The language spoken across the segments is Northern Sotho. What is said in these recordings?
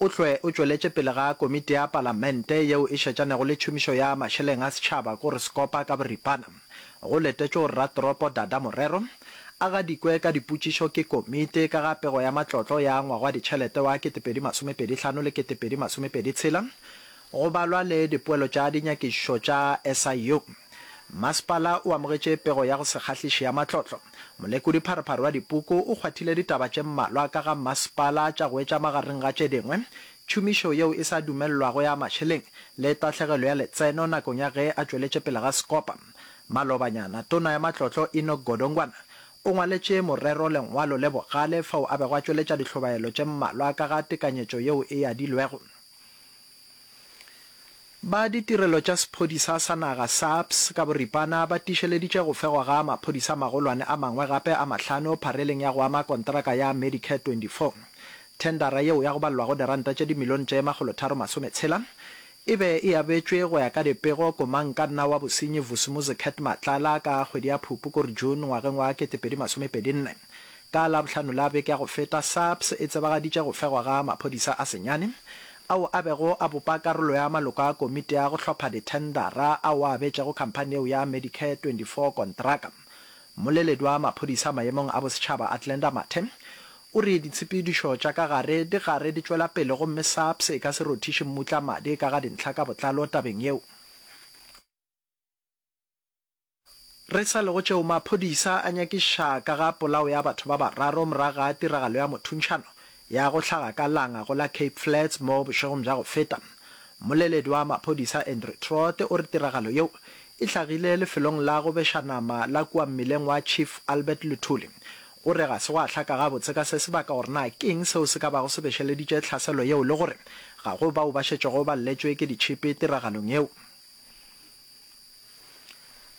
O hlwe o tšweletše pele ga Komiti ya Palamente yeo e Šetšanego le Tšhomišo ya Mašeleng a Setšhaba go re sekopa ka boripana go letetšwe gore Ratoropo Dada Morero a gadikwe ka dipotšišo ke Komiti ka ga Pego ya Matlotlo ya ngwaga wa ditšhelete wa 2025 le 2026 Go balwa le dipoelo tša dinyakišišo tša SIU, masepala o amogetše pego ya go se kgahliše ya matlotlo. Molekodi-pharephare wa dipuku o kgwathile ditaba tše mmalwa ka ga masepala tša go etša magareng ga tše dingwe, tšhomišo yeo e sa dumelelwago ya mašeleng le tahlegelo ya letseno nakong ya ge a tšweletše pele ga sekopa. Malobanyana, tona ya matlotlo Enoch Godongwana o ngwaletše morero lengwalo le bogale fao a bego a tšweletša dihlobaelo tše mmalwa ka ga tekanyetšo yeo e adilwego. Ba ditirelo tša sephodisa sa naga, SAPS, ka boripana ba tiišeleditše go fegwa ga maphodisa a magolwane a mangwe gape a mahlano phareleng ya go ama kontraka ya Medicare 24. Thendara yeo ya go balelwago diranta tše dimilione tše makgolotharo masometshela e be e abetšwe go ya ka dipego komangkanna wa bosenyi Vusumuzi Cat Matlala ka kgwedi ya Phupu kor June ngwageng wa 2024. Ka Labohlano la beke ya go feta, SAPS e tsebagaditše go fegwa ga maphodisa a senyane, ao a bego a bopa karolo ya maloko a komiti ya go hlopha dithendara ao a abetšego khamphani yeo ya Medicare 24 kontraka. Mmoleledi wa maphodisa maemong a bosetšhaba Athlenda Mathe o re ditshepedišo tša ka gare di gare di tšwela pele gomme SAPS e ka se rothiše mmutla madi ka ga dintlha ka botlalo tabeng yeo. Re sa lego tšeo, maphodisa a nyakiša ka ga polao ya batho ba bararo morago ga tiragalo ya mothuntšhano ya go hlaga ka Langa go la Cape Flats mo bošegong bja go feta. Mmoleledi wa maphodisa Andrew Trott o re tiragalo yeo e hlagile lefelong la go beša nama la kua mmileng wa Chief Albert Luthuli. O re ga se gwa hlaka gabotse ka se se baka gore na ke'ng seo se ka bago se bešeleditše tlhaselo yeo le gore ga go bao ba šetšego ba lletšwe ke ditšhipi tiragalong yeo.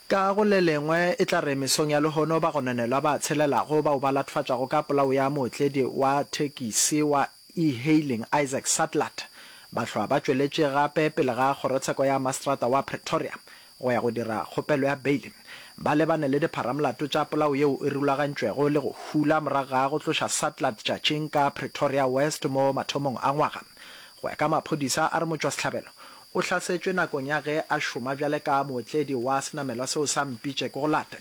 Ka go le lengwe, e tla re mesong ya lehono bagononelwa ba tshelelago bao ba lathofatšwago ka polao ya mootledi wa thekisi wa e-hailing Isaac Sadlat ba hlwa ba tšweletše gape pele ga kgorotsheko ya maseterata wa Pretoria go ya go dira kgopelo ya beile ba lebane le dipharamolato tša polao yeo e rulagantšwego le go hula morago ga go tloša Sadlat tšatšing ka Pretoria West mo mathomong a ngwaga. Go ya ka maphodisa, a re motšwasehlabelo O hlasetšwe nakong ya ge a šoma bjale ka mootledi wa senamelwa seo sa Mpitše ke go late.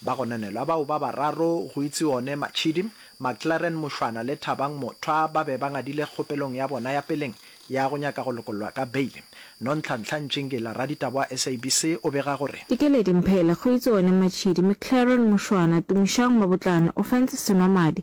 Ba go nanelwa bao ba bararo, go itse one Matšhidi, Maclaren Mošwana le Thabang Mothwa ba be ba ngadile kgopelong ya bona ya peleng ya go nyaka go lokollwa ka beile. Nontlhantlha Ntšingila, raditaba wa SABC, o bega gore. Dikeledi Mphele, go itse one Matšhidi, Maclaren Mošwana, Tumišang Mabotlana, Ofentse Senwamadi,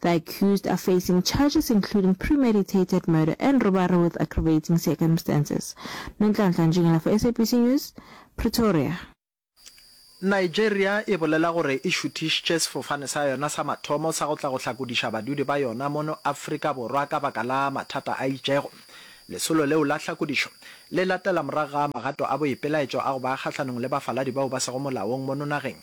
The accused are facing charges including premeditated murder and robbery with aggravating circumstances. Nonhlanhla Ntšhengela for SABC News, Pretoria. Nigeria e bolela gore e šuthišitše sefofane sa yona sa mathomo sa go tla go hlakodiša badudi ba yona mono Afrika Borwa ka baka la mathata a itšego. Lesolo leo la hlakodišo le latela morago ga magato a boipelaetšo a go ba kgahlanong le bafaladi bao ba sego molaong mono nageng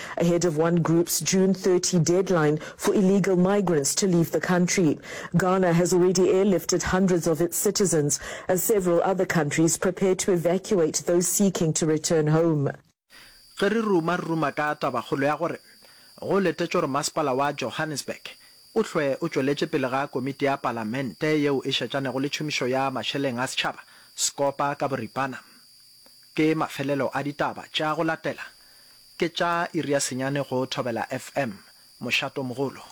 ahead of one group's June 30 deadline for illegal migrants to leave the country. Ghana has already airlifted hundreds of its citizens as several other countries prepare to evacuate those seeking to return home. Ge re ruma-ruma ka tabakgolo ya gore go letetšwe gore Masepala wa Johannesburg o hlwe o tšweletše pele ga Komiti ya Palamente yeo e Šetšanego le Tšhomišo ya Mašeleng a Setšhaba, Scopa, ka boripana, ke mafelelo a ditaba tša go latela Ke tša iri ya senyane go Thobela FM, Mošatomogolo.